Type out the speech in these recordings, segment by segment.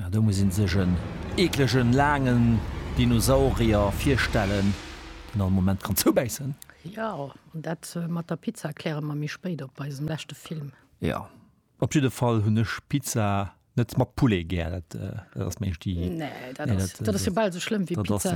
Ah, do muss ee sech en eeklegen, laangen Dinosaurier virstellen, deen all Moment kann zoubäissen. Jo, an dat mat der Pizza kläre mer méi spéit op eisem leschte Film. Jo, op jidde Fall hunn ech Pizza net mat Poulet gär. Dat ass meng Sti. Nee, dat ass, dat ass jo bal esou schlëmm wéi Pizza,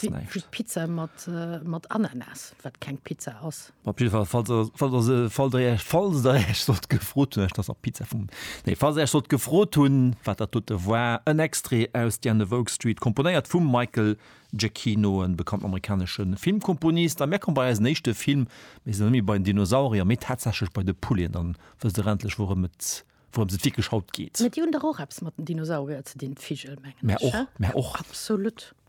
wéi Pizza mat Ananas, wat keng Pizza ass. Op jidde Fall, falls der, falls der se, falls der iech, falls der iech sollt gefrot hunn, ech, dass der Pizza vum, nee, falls der iech sollt gefrot hunn, wat dat dote war, en Extrait aus The End of Oak Street, komponéiert vum Michael Giacchino, e bekannten amerikanesche Filmkomponist. A mir komme bei eisen éischte Film. Mir sinn net méi bei den Dinosaurier, mee tatsächlech bei de Pouleten. Dann wësst der endlech, wourëm et, wourëms et wierklech haut geet. Mä déi hunn dach och eppes mat den Dinosaurier ze dinn, d'Vigel, mengen Mä ech, och, hä? mä och. Absolut.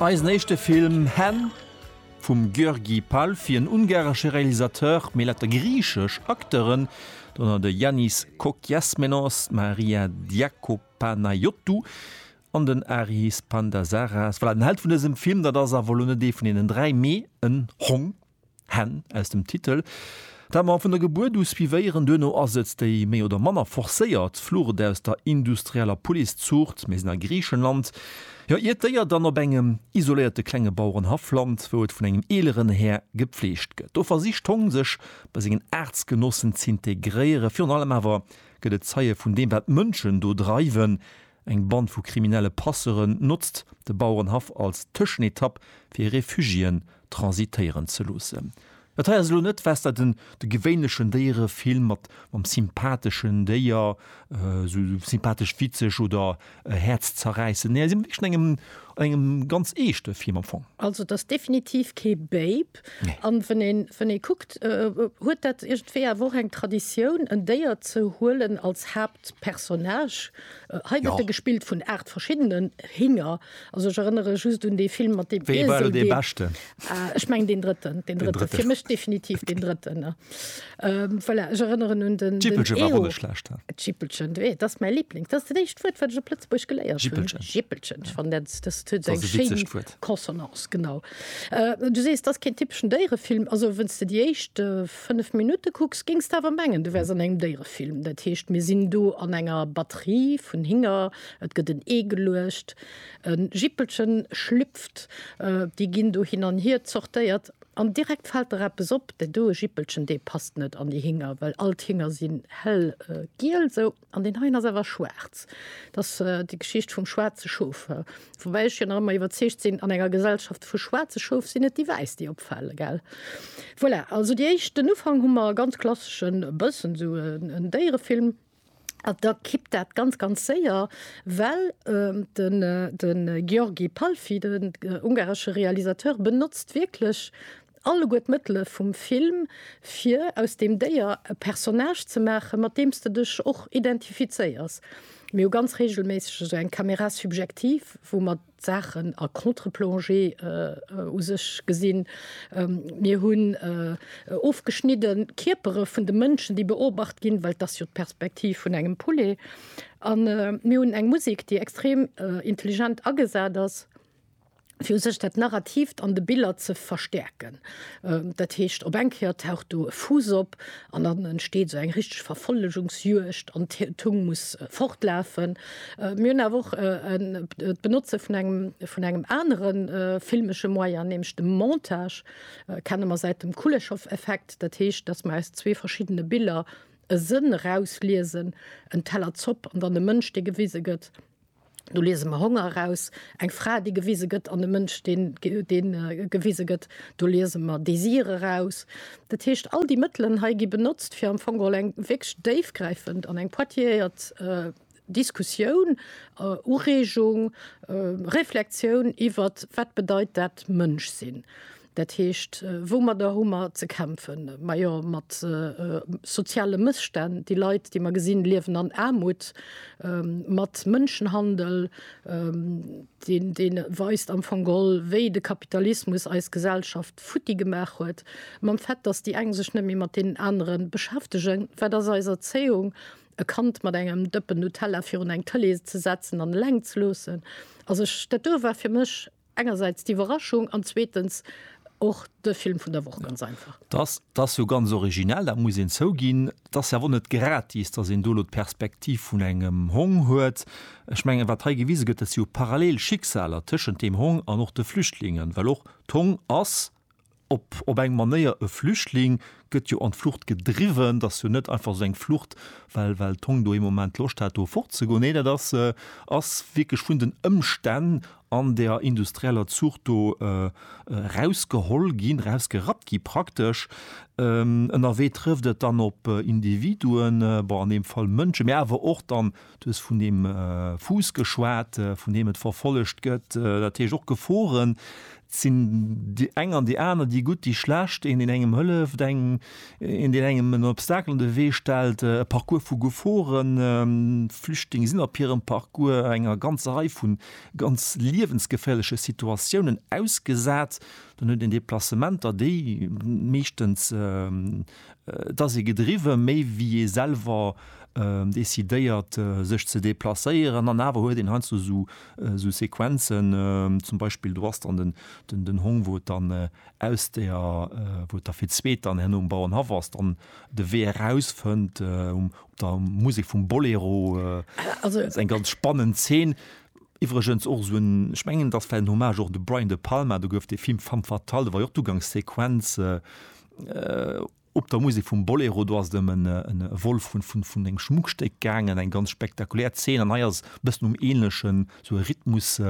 Eisen éischte Film Hen vum György Pál fir en ungaresche Realisateur, mee laut der griichesch Acteuren, dorënner de Yannis Kokiasmenos, d'Maria Diakopanayottou an den Aris Pandazaras. Voilà, den Held vun dësem Film, dat ass awer elo net ee vun deenen dräi, mee en Hong. Hänn aus dem Titel, dat mer vun der Gebuert u suivéieren. Duerno ass et déi méi oder manner forcéiert Flucht aus der industrieller Policëzuucht. Mir sinn a Griichenland, jo, iert d'Déier dann op engem isoléierte klenge Bauerenhaff lant, wou et vun engem eeleren Här gepfleegt gëtt. Do versicht d'Hong sech bei sengen Aartsgenossen z'integréieren. Virun allem awer gëtt et Zeie vun deem, wat d'Mënschen do dreiwen, Eng Band vu kriminelle Passeuren notzt de Bauerenhaff als Tëschenetapp fir Refugiéen transitéieren ze loossen. Dat hei ass elo net wesder den de gewéinlechen Déierefilm mat mam sympatheschen Déier, sou sympathesch witzeg oder häerzzerräissend, nee hei si mer wierklech an engem an engem ganz eeschte Film am Fong. Also et ass definitiv kee Babe. Alp. Nee. An wenn een, wenn ee kuckt, huet dat iergendwéi awer och eng Traditioun, en Déier ze huelen als Haaptpersonnage. Hei gëtt e Jo. gespillt vun aacht verschiddenen Hinger. Also ech erënnere just un dee Film mat deem Wéi war elo Iesel, dee dee, beschten? ah, ech mengen deen drëtten, deen Den drëtten, drëtten. fir mech definitiv deen drëtten, ne. Ähm, voilà, ech erënneren un den, den Jippelche war och Eeho. net schlecht. D'Jippelchen, do, dat ass mäi Liebling. Dat ass dat éischt Wuert, wat ech op Lëtzebuergesch geléiert hunn. Jippelchen. Jippelchen. Ech fannen dat, dat huet Dat ass eng e schéin witzegt Wuert. Consonance, genau. Du sees, et ass keen typeschen Déierefilm. Also wenn's de déi éischt 5 Minutte kucks, géings de awer mengen, du wäers an engem Déierefilm. Dat heescht, mir sinn do an enger Batterie vun Hinger, et gëtt en Ee geluecht, e Jippelchen schlüpft, déi ginn do hin an hier zortéiert an direkt fält der eppes op, dat do e Jippelchen, dee passt net an déi Hinger, well all d'Hinger sinn hellgiel, sou. An deen heien ass awer schwaarz. Et ass déi Geschicht vum schwaarze Schof. Woubäi ech jo nach ëmmer iwwerzeegt sinn, an enger Gesellschaft vu schwaarze Schof sinn et déi Wäiss, déi opfale, gell? Voilà, also déi éischt, den Ufank hu mer e ganz klasseschen, e bëssen esou en Déierefilm. An da kippt dat ganz, ganz séier, well de György Palffy, den ungaresche Realisateur, benotzt wierklech, Alleguer d'Mëttele vum Film, fir aus deem Déier e Personnage ze maachen, mat deem s de dech och identifizéiers. Mir hu ganz reegelméisseg esou eng Caméra subjective, wou mer d'Saachen a Contre-plongée u sech gesinn. Mir hunn ofgeschnidde Kierpere vun de Mënschen, déi beobacht ginn, well et ass jo d'Perspektiv vun engem Poulet. A mir hunn eng Musek, déi extrem intelligent agesat ass. fir u sech dat Narrativt an de Biller ze verstäerken. Dat heescht, op eng Kéier taucht do e Fuuss op an dann entsteet esou eng richteg Verfollegungsjuegd an d'Hung muss fortlafen. Mir hunn awer och d'Benotze vun engem vun engem anere filmesche Moyen, nämlech dem Montage, kenne mer säit dem Kuleshov-Effekt. Dat heescht, datt mer aus zwee verschiddene Biller e Sënn erausliesen, en Teller Zopp an dann e Mënsch, dee gewise gëtt. Do liese mer Honger eraus, eng Fra, déi gewise gëtt, an e Mënsch, dee gewise gëtt. Do liese mer Désir eraus. Dat heescht, all déi Mëttelen hei gi benotzt, fir am Fong geholl eng wierklech déifgräifend an eng pointilleéiert Diskussioun, Ureegung, Reflexioun iwwert, Wat bedeit dat Mënsch sinn? Dat heescht, woumadder hu mer ze kämpfen? Majo mat soziale Mësstänn. Déi Leit, déi mer gesinn, liewen an Aarmut, mat Mënschenhandel, deen, deen weist am Fong gol, wéi de Kapitalismus eis Gesellschaft futti gemaach huet, mam Fait, datt déi eng sech net méi mat deenen anere beschäftegen. Wat ass eis Erzéiung? E Kand mat engem Dëppen Nutella virun eng Tëlee ze setzen an eleng ze loossen. Also ech, dat do war fir mech Engersäits d'Iwwerraschung an zweetens och de Film vun der Woch, ganz einfach. Dass, dass jo ganz originell, dat muss een zouginn. Et ass jo awer och net gratis, dass een do elo d'Perspektiv vun engem Hong huet. Ech mengen, wat hei gewise gëtt, dat si jo parallel Schicksaler tëschent deem Hong an och de Flüchtlingen, well och d'Hong ass, op op eng Manéier e Flüchtling gëtt jo an d'Flucht gedriwwen. T'ass jo net einfach esou eng Flucht, well well d'Hong do ee Moment Loscht hat do fortzegoen. Nee, dat ass ass wierklech vun den Ëmstänn an der industrieller Zuucht do erausgeholl ginn, erausgerappt gi praktesch. Ënnerwee trëfft et dann op Individuen, bon an deem Fall Mënsche, mä awer och dann Du hues vun deem Fuuss geschwat, vun deem et verfollegt gëtt, dat heescht och Geforen. Et sinn déi eng an déi aner, déi gutt, déi schlecht, een, deen engem hëlleft, eng, een, deen engem en Obstacle an de Wee stellt, e Parcours vu Geforen. Flüchtlinge sinn op hirem Parcours enger ganzer Rei vu ganz liewensgeféierleche Situatiounen ausgesat. Dann huet een Deplacementer, déi meeschtens, Et ass ee gedriwwe méi wéi ee selwer decidéiert sech ze deplacéieren an awer huet een heiansdo sou Sequenzen, zum Beispill do ass dann den Hong wou et dann aus der, wou et da fir d'zweet dann herno um Bauernhaff ass, dann de Wee eraus fënnt op der Musek vum Bolero. Also et ass eng ganz spannend Zeen. Iwwregens och sou en, ech mengen et ass vläicht en Hommage och de Brian De Palma, do gouf dee Film Femme fatale, do war jo och d'Ugangssequenz, Op der Musek vum Bolero, do ass et ëm e Vol vun engem Schmuckstéck gaangen, eng ganz spektakulär Zeen. An hei ass e bëssen um Änlechen, esou e Rhythmus,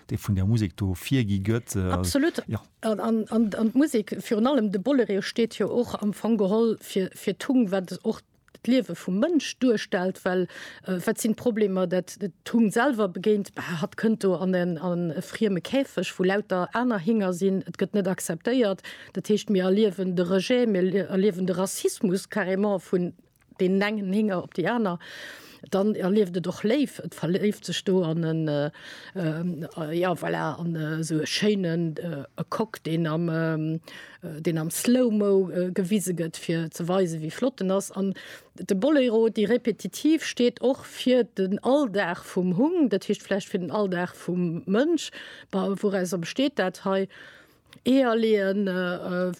dee vun där Musek do virgi gëtt. Absolut. An d'Musek, virun allem de Bolereo, steet jo och am Fong geholl fir d'Tung, wat och d'Liewe vum Mënsch duerstellt, well wat sinn d'Problemer, dat d'Hung selwer begéint, Bah, hatt kënnt do an e frieme Käfeg, wou lauter aner Hinger sinn, et gëtt net acceptéiert. Dat heescht, mir erliewen de Rejet, mir erliewen de Rassismus carrément vun deenen engen Hinger op déi aner. Dann erlieft et och léif, et verléift sech do an en, jo voilà, an esou e schéinen Coq, deen am, deen am Slow-Mo gewise gëtt, fir ze weisen, wéi flott en ass. An de Boléro, déi Repetitiv, steet och fir den Alldag vum Hung, dat heescht vläicht fir den Alldag vum Mënsch. Wourauser besteet dat hei? Eeër leeën,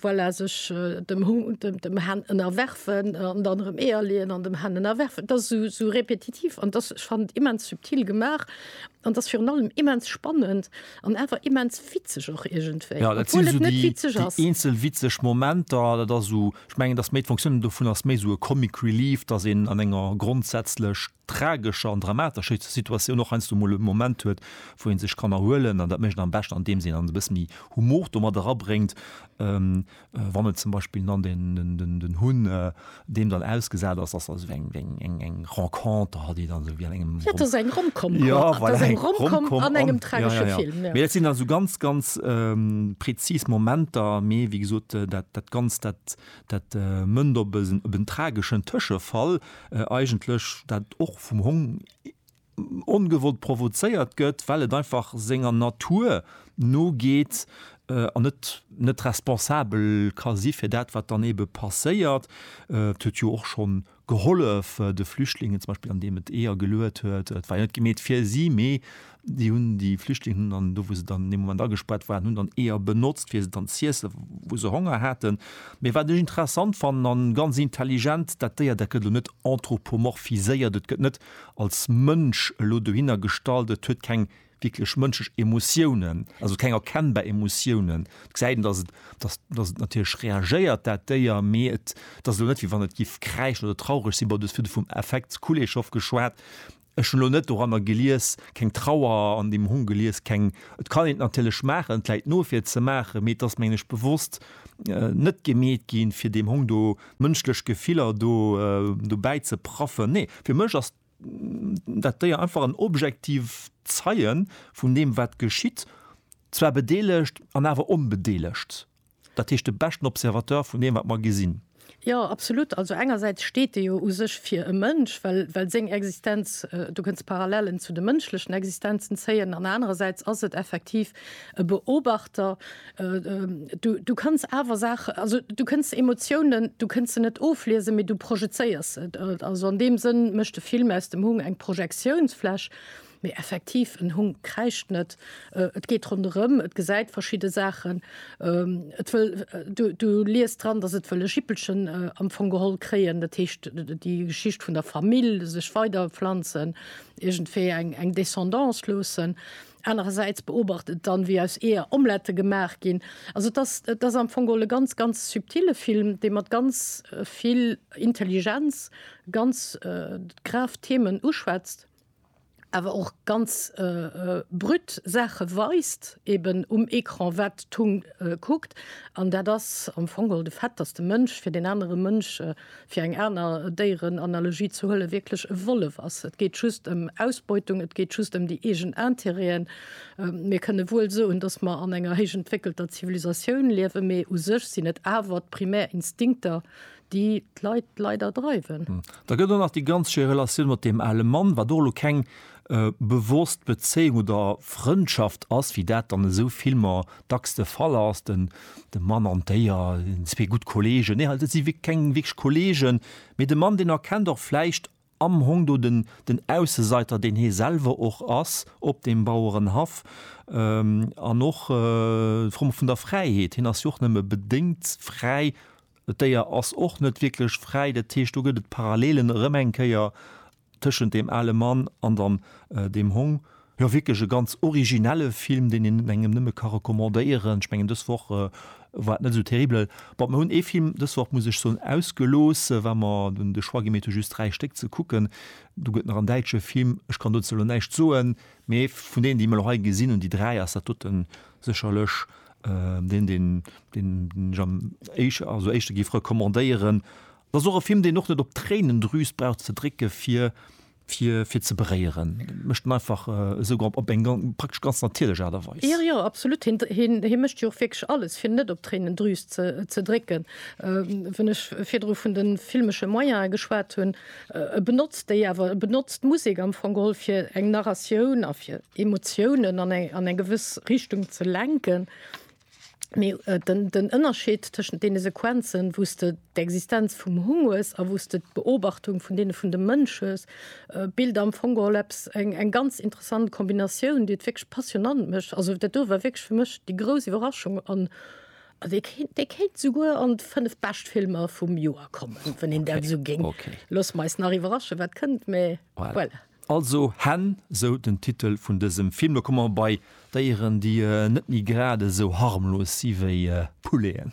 voilà, sech dem Hund, dem Hen ënnerwerfen an dann erëm Eeër leeën an dem Hen ënnerwerfen. Et ass esou, esou repetitiv an dass, ech fannen et immens subtil gemaach an dass virun allem immens spannend an awer immens witzeg och iergendwéi, obwuel et net witzeg ass. Jo, dat sinn esou déi, déi eenzel witzeg Momenter. Dat ass esou, ech mengen, dass méi d'Fonctionne dovun ass méi esou e Comic Relief, dass een an enger grondsätzlech tragescher an dramatescher Situatioun och heiansdo emol e Moment huet, wou ee sech kann erhuelen. An dat mécht een am beschten, andeems een dann e bësse méi Humor do mat erabréngt, wann et zum Beispill dann den Hunn deem dann ausgesat ass, dass also eng eng Renconter hat, déi dann esou wéi an engem. Dat ass eng Rom-Com, dat ass eng Rom-Com an engem tragesche Film. Mee dat sinn dann esou ganz, ganz prezis Momenter. Mee wéi gesot, dat Ganzt, dat. Dat mënnt op en trageschen Tëschefall, eigentlech dat och vum Hong ongewollt provozéiert gëtt, well et einfach senger Natur nogeet an et net responsabel ka si fir dat, wat dann eebe passéiert. Et huet jo och schonn gehollef de Flüchtlingen zum Beispill an deem et Eeër geluet huet, et war jo net gemeet fir si, mee déi hunn déi Flüchtlingen hunn dann do wou se dann an deem Moment agespaart waren, hunn dann Eeër benotzt fir se dann z'iessen wou se Honger haten. Mee wat ech interessant fannen an ganz intelligent, dat Déier dat gëtt elo net anthropomorphiséiert, et gëtt net als Mënsch elo dohinner gestallt, et huet keng wierklech mënschlech Emotiounen, also keng erkennbar Emotiounen. Et gesäit een, datt et, datt, datt et natierlech reagéiert, dat Déier, mee et, et ass elo net, wéi wann et géif kräischen oder traureg sinn. Bon, du hues virdru vum Affekt Kuleshov geschwat. Ech hunn elo net doranner gelies, keng Trauer an deem Hong gelies, keng, et kann een et natierlech maachen, et Läit no fir ze maachen, mee et ass, mengen ech, bewosst net gemeet ginn, fir deem Hong do mënschlech Gefiller do, dobäi ze praffen. Nee, fir mech ass. dat Déier einfach en objektiv Zeie vun deem wat geschitt, zwar bedeelegt an awer onbedeelegt, dat heescht de beschten Observateur vun deem wat mer gesinn. Jo, absolut. Also engersäits steet e jo u sech fir e Mënsch, well well seng Existenz, do kënnst Parallelen zu de mënschlechen Existenzen zéien, an anerersäits ass et effektiv e Beobachter, du, du kanns awer Saachen, also du kënns Emotiounen, du kënns se net ofliesen, mee du projezéiers se. Also an deem Sënn mécht de Film aus dem Hung eng Projektiounsfläch. Mee effektiv, en Hung kräischt net, et geet ronderëm, et gesäit verschidde Saachen, et wëll, du, du liest dran, datt et wëll e Jippelchen am Fong geholl kréien, dat heescht déi Geschicht vun der Famill, sech weiderpflanzen, iergendwéi eng, eng Descendance loossen. Anerersäits beobacht et dann, wéi aus Eeër Omlette gemaach ginn. Also et ass, et ass am Fong geholl e ganz, ganz subtile Film, dee mat ganz vill Intelligenz ganz grav Themen uschwätzt, awer och ganz brüt Saache weist eeben um Ecran, wat d'Hung kuckt. An dat ass am Fong geholl de Fait, datt de Mënsch fir deen anere Mënsch fir eng aner Déierenanalogie ze huelen, wierklech e Wollef ass. Et geet just ëm Ausbeutung, et geet just ëm déi eegen Intérêten. Mir kënne wuel soen, datt mer an enger héich entwéckelter Zivilisatioun liewen, mee u sech sinn et awer d'primär Instinkter, déi d'Leit leider dreiwen. Da gëtt och nach déi ganz schéi Relatioun mat deem ale Mann, wat och elo keng bewosst Bezéiung oder Frëndschaft ass, wéi dat an esou Filmer dacks de Fall ass, den de Mann an d'Déier, zwee gutt Kollegen, nee dat si keng wierklech Kollegen, mee de Mann deen erkennt och vläicht am Hong do den den Ausseseiter deen hie selwer och ass op deem Bauerenhaff an och d'Fro vun der Fräiheet, hien ass jo och nëmme bedéngt fräi, d'Déier ass och net wierklech fräi, dat heescht do gëtt et Parallelen erëm eng Kéier Tëschent deem ale Mann an dann deem Hong. Jo wierklech e ganz originelle Film, deen een engem nëmme ka recommandéieren. Ech mengen dës Woch war et net esou terribel. Bon, mer hunn ee Film dës Woch, muss ech soen, ausgelooss, well mer hunn de Choix gemeet hu just dräi Stéck ze kucken. Do gëtt nach en däitsche Film, ech kann dozou elo näischt soen, mee vun deenen déi mer elo hei gesinn hunn, déi dräi, ass dat doten sécherlech deen, deen ech am éischte gi recommandéieren. Et ass och e Film, deen och net op d'Tréinendrüs brauch ze drécke fir fir fir ze beréieren. Et mécht en einfach esou op op eng praktesch ganz natierlech Aart a Weis. Jo, jo, absolut. Hien, hien, hie mécht jo och wierklech alles fir net op d'Tréinendrüs ze ze drécken. Wann ech virdru vun de filmesche Moyene geschwat hunn, e benotzt déi awer, e benotzt d'Musek am Fong geholl fir eng Narratioun a fir Emotiounen an eng an eng gewëss Richtung ze lenken. Mee den Ënnerscheed tëschent deene Sequenzen, wou s de d'Existenz vum Hung hues a wou s de d'Beobachtung vun deene vun de Mënsch hues, bilt am Fong geholl eppes, eng ganz interessant Kombinatioun, déi et wierklech passionnant mécht. Also dat do war wierklech fir mech déi grouss Iwwerraschung an dee kéint souguer an d'fënnef bescht Filmer vum Joer kommen, wann een dat esou géing. Loosse mer eis nach iwwerraschen, wat kënnt. Mee voilà. Also Hänn, sou den Titel vun dësem Film. Lo komme mer bei Déieren, déi net méi grad esou harmlos si wéi Pouleten.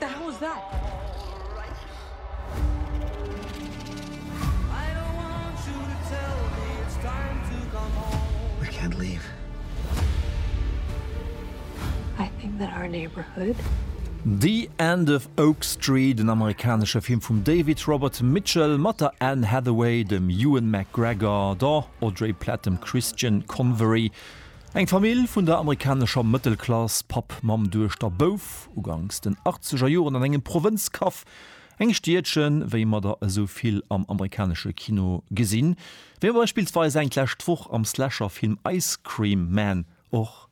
Da hau se ab! The End of Oak Street, en amerikanesche Film vum David Robert Mitchell mat der Anne Hathaway, dem Ewan McGregor, der Audrey Platt, dem Christian Convery, Eng Famill vun der amerikanescher Mëttelklass, Papp, Mamm, Duechter, Bouf, uganks den achtzeger Joren an engem Provënzkaff, engem Stiedchen, wéi mer der esou vill am amerikanesche Kino gesinn, wéi mer beispillsweis eng d'lescht Woch am Slasher-Film Ice Cream Man och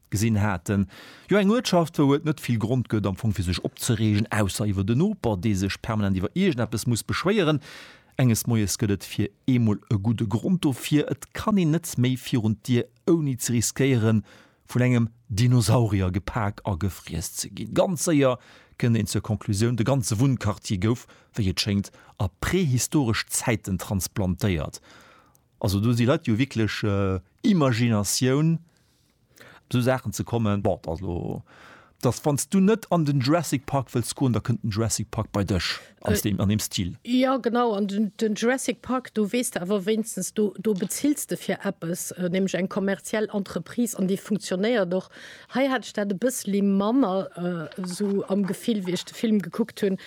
gesinn haten. Jo, eng Uertschaft, wou et net vill Grond gëtt am Fong fir sech opzereegen, ausser iwwer den Noper, dee sech permanent iwwer iergendeppes muss beschwéieren. Enges Moies gëtt et fir eemol e gudde Grond dofir, et kann een net méi virun d'Dier ouni ze riskéieren, vun engem Dinosaurier gepak a gefriess ze ginn. Ganz séier kënnt een zur Conclusioun, de ganze Wunnquartier gouf, wéi et schéngt, a prehistoresch Zäiten transplantéiert. Also do si Leit jo wierklech, Imaginatioun Op esou Saachen ze kommen, bon, also dass wann s du net an den Jurassic Park wëlls goen, da kënnt den Jurassic Park bei dech an deem, an deem Stil. Jo genau, an den, den Jurassic Park, do weess de awer wéinstens, do, do bezills de fir eppes, nämlech eng kommerziell Entreprise an déi funktionéiert och. Hei hat ech dat e bësseli manner esou am Gefill, wéi ech de Film gekuckt hunn.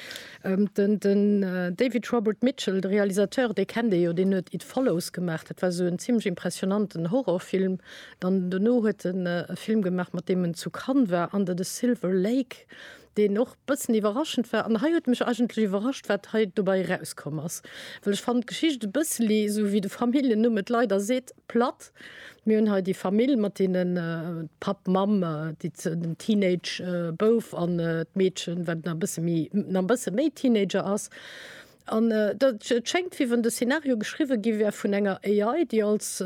Den, den David Robert Mitchell, de Realisateur, dee kennt ee jo, deen huet It Follows gemaach, dat war esou en zimlech impressionanten Horrorfilm, Dann dono huet en e Film gemaach, mat deem en zu Cannes war, Under the Silver Lake, deen och e bëssen iwwerraschend war. An hei huet mech eigentlech iwwerrascht, wat hei dobei erauskomm ass, well ech fannen d'Geschicht e bësseli, esou wéi de Familljennumm et leider seet, platt. Mir hunn hei déi Famill mat deenen, Papp, Mamm, déi, den Teenage Bouf an d'Meedchen, wat nach e bësse méi, nach e bësse méi Teenager ass. An et schéngt, wéi wann de Szenario geschriwwe gi wär vun enger AI, déi als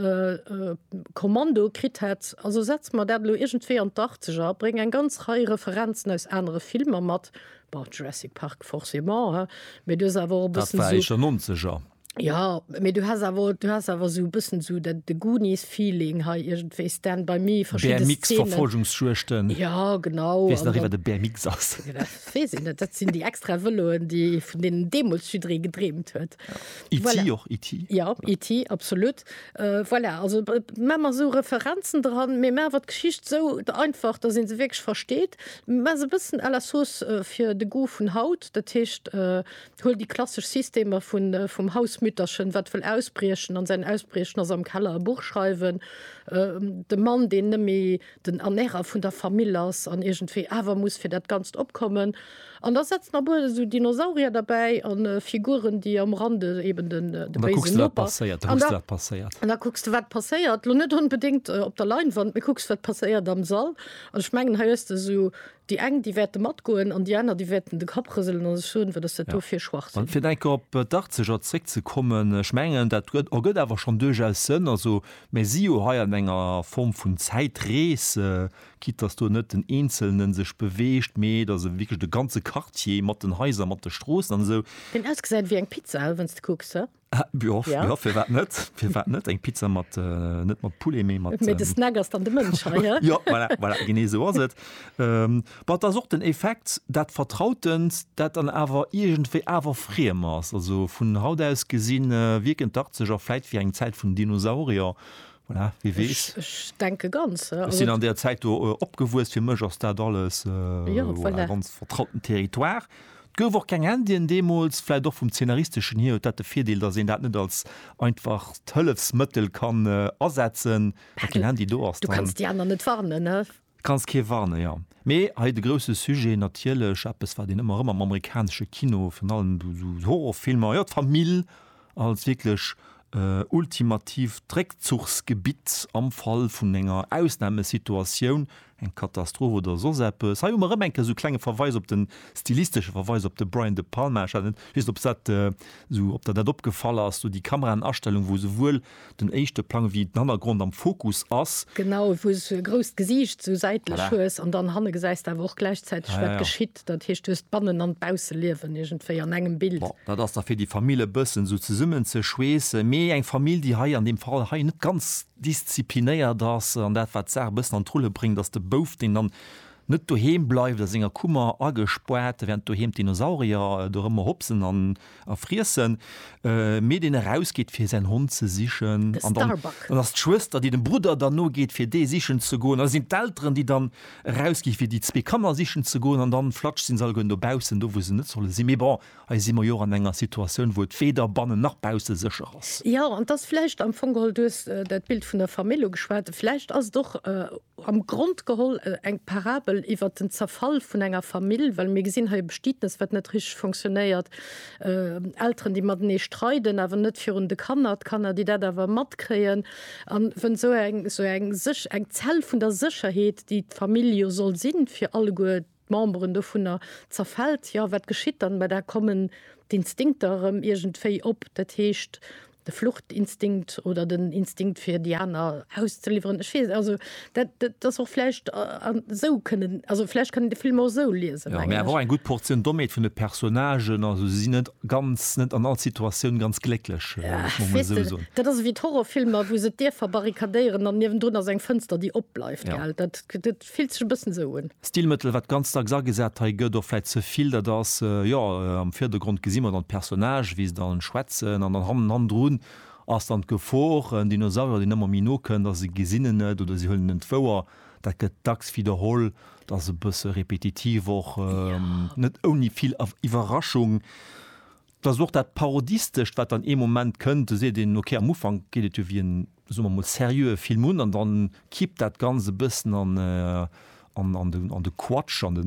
Kommando kritt hätt, Also setz mer dat elo iergendwéi an d'Arktesch a bréng eng ganz Rei Referenzen aus anere Filmer mat. Bon, Jurassic Park forcément, hein, mä du hues awer och e Dat bëssen war Éischer esou, Nonzeger. jo, mä du hues awer, du hues awer esou e bëssen esou dat, de Goonies-Feeling hei iergendwéi, Stand by Me, verschidde Szenen. BMX-Verfolgungsjuegten. Jo, genau. Weess nach ee, wat e BMX ass? Weess een net, dat sinn déi extra Vëloen, déi vun deenen deemools jidderee gedreemt huet. E.T. och, E.T. Jo, E.T. absolut. Voilà, also maache mer esou Referenzen dran, mee maache mer d'Geschicht esou einfach, dass ee se wierklech versteet. Maache se e bëssen à la sauce fir de Goût vun haut, dat heescht, huel déi klassesch Systemer vum Hausmütterchen, wat wëll ausbriechen an säin Ausbriechen ass am Keller e Buch schreiwen, de Mann, deen net méi den Ernärer vun der Famill ass an iergendwéi awer muss fir dat Ganzt opkommen. An da setzt nach bol esou Dinosaurier derbäi an Figuren, déi am Rande eben den béisen Noper. An da kucks de, wat passéiert. An da kucks de, wat passéiert. Lo net onbedéngt op der Leinwand, mee kucks, wat passéiert am Sall. An ech mengen, hei hues de esou Déi eng, déi wäerte matgoen an déi aner, déi wäerten de Kapp rëselen a sech soen, Wat ass dat do fir Schwachsinn? A fir enker op d'Darzeger zréckzekommen, ech mengen, dat ergëtt awer schonn duerchaus Sënn. Also mir si jo hei an enger Form vun Zäitrees, quitte dass do net den Eenzelne sech beweegt, mee et ass wierklech de ganze Quartier mat den Haiser, mat de Stroossen an esou. Deen ausgesäit ewéi eng Pizza, wéinst de kucks, he? Ah, jo, ja. ja fir wat net fir wat net eng Pizza mat äh, net mat Poulet méi mat Mit de ähm, Snack ass dann de Mënsch hei, ja? ja, voilà, voilà, genee so ass et ähm, wat ass och den Effekt dat vertrautend dat dann awer iergendwéi awer friem ass also vun haut aus gesinn äh, wierken d'Arzeger vläit wéi eng Zäit vun Dinosaurier voilà, wie wees Ich, ich denke ganz. Ja. Ech sinn Also, an der Zäit do äh, opgewuess fir mech ass dat alles äh, Ja, voilà, voilà. ganz vertrauten Territoire 't gouf och keng Indien deemools. Vläit och vum Zeenaristeschen hier huet dat de Virdeel, datt een dat net als einfacht Hëllefsmëttel kann asetzen, Mä keen Handy do ass, Du dann kanns déi aner net warnen, ne? kanns kee warnen, jo. Mee hei de grousse Sujet, natierlech eppes, wat een ëmmer erëm am amerikanesche Kino, virun allem esou Horrorfilmer, jo, d'Famill als wierklech ultimatiivt Réckzuchsgebitt am Fall vun enger Ausnamesituatioun, eng Katastroph oder soss eppes. Hei hu mer erëm eng Kéier esou e klenge Verweis op de, stilistesche Verweis op de Brian De Palma. Ech hat net, weess net, ob dat esou, ob der dat opgefall ass, do déi Kameraenastellung, wou esouwuel den éischte Plang wéi den Hannergrond am Fokus ass. Genau, wou s du e grousst Gesiicht esou säitlech hues an dann hanne gesäis de awer och gläichzäiteg, wat geschitt. Dat heescht du hues d'Bannen an d'Bausseliewen iergendwéi an engem Bild. Bon, dat ass da fir déi Famill e bëssen esou zesummenzeschweessen, mee eng Famill, déi hei an deem Fall hei net ganz disziplinéiert ass an dat wat d'Saach e bëssen an d'Rulle bréngt, ass de Bouf, deen dann net doheem bleift a senger Kummer agespaart, wärend doheem d'Dinosaurier dorëmmer hopsen an A friessen, mee deen erausgeet fir säin Hond ze sichen. De Starbuck. Dann ass d'Schwëster déi dem Brudder dann nogeet fir dee sichen ze goen. Da sinn d'Elteren déi dann erausgi fir déi zwee Kanner sichen ze goen. An dann flatsch sinn se allegueren dobaussen do wou se net solle sinn. Mee bon, hei si mer jo och an enger Situatioun wou et weder bannen nach bausse sécher ass. Jo, an 't ass vläicht am Fong geholl, du hues dat Bild vun der Famill ugeschwat, vläicht ass et och am Grond geholl eng Parabel iwwert den Zerfall vun enger Famill, well mir gesinn hei e Bestietnes, wat net richteg fonctionnéiert, Elteren, déi matenee streiden, awer net virun de Kanner, d'Kanner, déi dat awer matkréien, a wou esou eng Zell vun der Sécherheet, déi d'Famill jo soll sinn fir alleguer, d'Memberen dovunner zerfällt, jo, wat geschitt dann? Mä da kommen d'Instinkter erëm iergendwéi op, dat heescht de Fluchtinstinkt oder den Instinkt fir déi aner auszeliwweren. Ech weess, also dat, dat ass och vläicht esou kënnen, also vläicht kann een de Film och esou liesen, mengen ech. Jo, mä awer och eng gutt Portioun Dommheet vun de Personnagen, also si sinn net ganz, net an all Situatioun ganz glécklech, wëll ech mol esou soen. Weess de, dat ass ewéi d'Horrorfilmer, wou se d'Dierfer barrikadéieren an niewendrun ass eng Fënster, déi opbleift, gell? Dat, dat fillt sech e bëssen esou un. Stilmëttel, wat ganz dacks agesat hei gëtt, och vläit ze vill, dat ass, jo, am Virdergrond gesi mer dann d'Personnage, wéi se dann schwätzen, an dann hannen, hannendrun ass dann d'Gefor, en Dinosaurier, deen ëmmer méi no kënnt a se gesinn en net oder si huelen en net wouer. Dat gëtt dacks widderholl, dat ass e bësse repetitiv och, net ouni vill Iwwerraschung. Dat ass och dat Parodistescht, wat dann ee Moment kënnt, do seet een, okay, am Ufank geet et jo wéi en, soe mer mol, seriöe Film un, an da kippt dat Ganzt e bëssen an de Quatsch, an de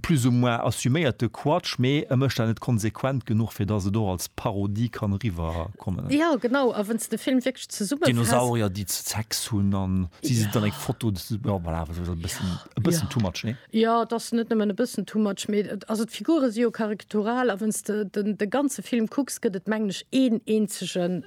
plus ou moins assuméierte Quatsch, mee e mécht dat net konsequent genuch, fir dass et och als Parodie kann eriwwerkommen. Jo, genau. A wann s de de Film wierklech zesummefaasst. Dinosaurier, déi Sex hunn, an si sinn an eng Foto, jo, voilà, e bëssen too much, nee? Jo, et ass net nëmmen e bëssen too much, mee et, also d'Figure si jo karikatural a wenn's de den de ganze Film kucks, gëtt et mengen ech een eenzege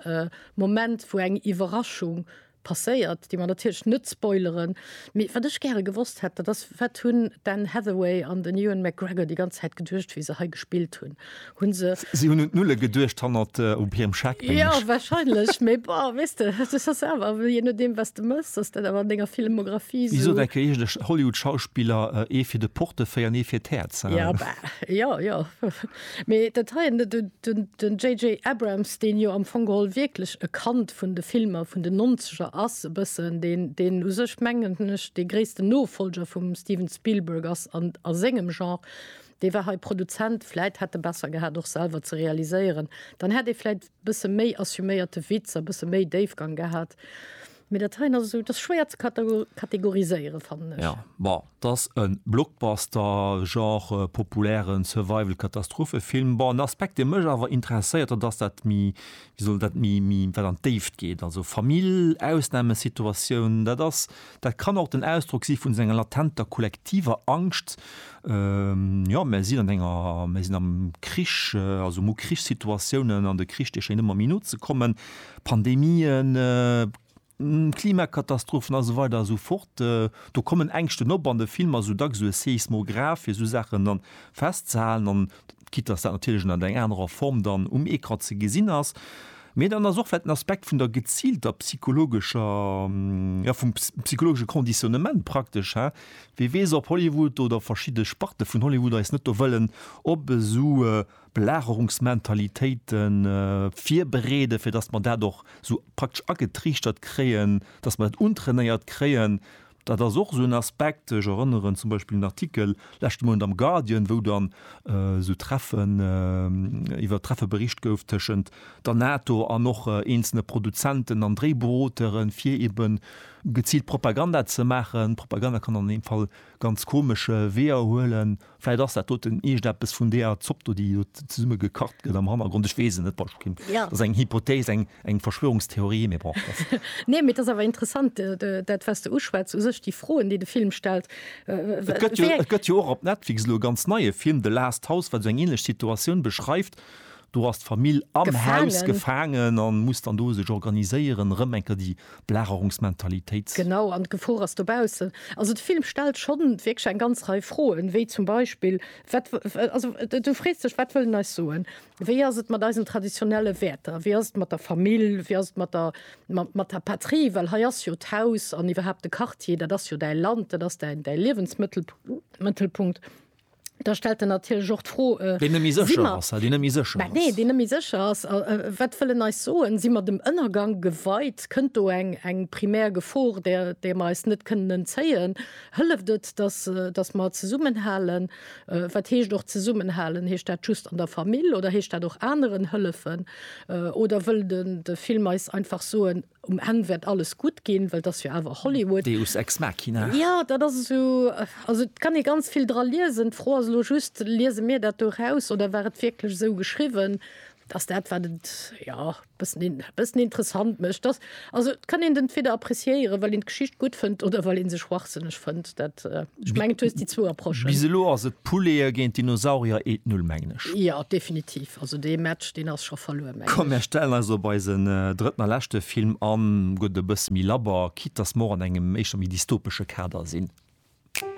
Moment wou eng Iwwerraschung passéiert, déi mer natierlech net spoileren. Mee wat ech gäre gewosst hätt, dat ass, wat hunn d'Anne Hathaway an den Ewan McGregor déi ganz Zäit geduecht wéi se hei gespillt hunn? hunn se. Si hunn un d'Nulle geduecht hannert op hirem Scheck, mengen ech. Jo, wahrscheinlech, mee bon, weess de, dat ass awer, jee nodeem, wat s de méchs, ass dat awer an denger Filmografie esou. Wéi sot eng Kolleegin, de Hollywood-Schauspiller, ee fir de Portefeuille an ee fir d'Häerz, hein. Jo, bah, jo, jo. Mee dat heien, den JJ. Abrams, deen jo am Fong geholl wierklech e Kand vun de Filmer vun den Nonzeger ass, e bëssen, deen, deen u sech, mengen ech, dee gréissten Nofolger vum Steven Spielberg ass a sengem Genre, Wee war hei Produzent? Vläit hätt e besser gehat och selwer ze realiséieren, dann hätt ee vläit bësse méi assuméierte Witz a bësse méi Déifgang gehat. Mee dat heien ass esou, dat ass schwéier ze kategoriséieren, fannen ech. Ja, bon, 't ass e Blockbuster, Genre populären Survival-Katastrophefilm. Bon, en Aspekt, dee mech awer interesséiert, dat ass dat méi, wéi soll dat, méi, méi wat an d'Déift geet. Also Famill, Ausnamesituatioun, dat ass Dat kann och den Ausdrock si vun senger latenter kollektiver Angscht, jo, mer sinn an enger, mer sinn am Krich, also mu Krichssituatiounen an de Krich, dee schéngt ëmmer méi no ze kommen, Pandemien, Klimakatastrophen a sou weider a sou fort. Do kommen Ängschten op an de Film ass esou dacks esou e Seismograph, fir esou Saachen dann festzehalen an quitte dass dat natierlech ënnert eng anerer Form dann um Ecran ze gesinn ass, mee dann ass och vläicht en Aspekt vun der geziilter psychologescher, jo vum psychologesche Conditionnement praktesch, he? Wie weess ob Hollywood oder verschidde Sparte vun Hollywood eis net do wëllen op esou Belagerungsmentalitéite virbereeden, fir dass mer dat och esou praktesch agetriichtert kréien, dass mer dat untrainéiert kréien, Dat ass och esou en Aspekt. Ech erënneren zum Beispill un en Artikel leschte Mount am Guardian, wou dann esou Treffen, iwwer Treffe bericht gouf tëschent der NATO an och eenzelne Produzenten an Dréiberotere fir eben geziilt Propaganda ze maachen. Propaganda kann an deem Fall ganz komesch Weeër huelen. Vläit ass dat doten iergendeppes vun deeër Zopp do, déi do zesumme gekacht gëtt am Hannergrond. Ech weess et net. Dat ass eng Hypothese, eng, eng Verschwörungstheorie, mee bon, dat. Nee, mee et ass awer interessant, dat, wat s de uschwätz, u sech déi Froen, déi de Film stellt. Et gëtt jo, et gëtt jo och op Netflix elo e ganz neie Film, The Last House, wat esou eng änlech Situatioun beschreift, Do ass d'Famill am Haus gefaangen a muss dann do sech organiséieren, erëm eng Kéier déi Belagerungsmentalitéit. Genau, an d'Gefor ass dobaussen. Also de Film stellt scho wierklech eng ganz Rei Froen, wéi zum Beispill, wat, also du frees dech, wat wëll en eis soen? Wéi ass et mat eisen traditionelle Wäerter? Wéi ass et mat der Famill? Wéi ass et mat der, mat der Patrie? Well hei ass jo d'Haus an iwwerhaapt de Quartier, dat ass jo däi Land, dat ass däi Liewensmëttel, Mëttelpunkt. da stellt en natierlech och d'Fro, äh, Deen net méi si sécher mer, ass, deen net méi sécher bah nee, ass. deen net méi sécher ass, äh, äh, wat wëll en eis soen? Si mer dem Ënnergang geweit? Kënnt do eng, eng primär Gefor, där, där mer eis net kënnen entzéien? Hëlleft et, datt, äh, datt mer zesummenhalen? Äh, wat heescht och zesummenhalen? Heescht dat just an der Famill oder heescht dat och aneren hëllefen? Äh, oder wëll den, de Film eis einfach soen, Um Enn wäert alles gutt ginn, well et ass jo awer Hollywood. Deus ex machina. Jo, dat ass esou. Also et kann ee ganz vill dra liesen. D'Fro ass elo just, liese mir dat do eraus oder war et wierklech esou geschriwwen? Dat ass dat, wat et, jo, e bëssen, e bëssen interessant mécht. Dass, also et kann een et entweder appreciéieren, well een d'Geschicht gutt fënnt oder well ee se schwachsënneg fënnt. Dat, ech mengen, du hues déi zwou Approchen. Bis elo ass et Poulet'e géint Dinosaurier, et nul, mengen ech. Jo, definitiv. Also dee Match, deen ass scho verluer. Komm mär stellen eis op eisen drëtten a leschte Film an, gutt e bësse méi labber, quitte dass mer och an engem éischter méi dystopesche Kader sinn.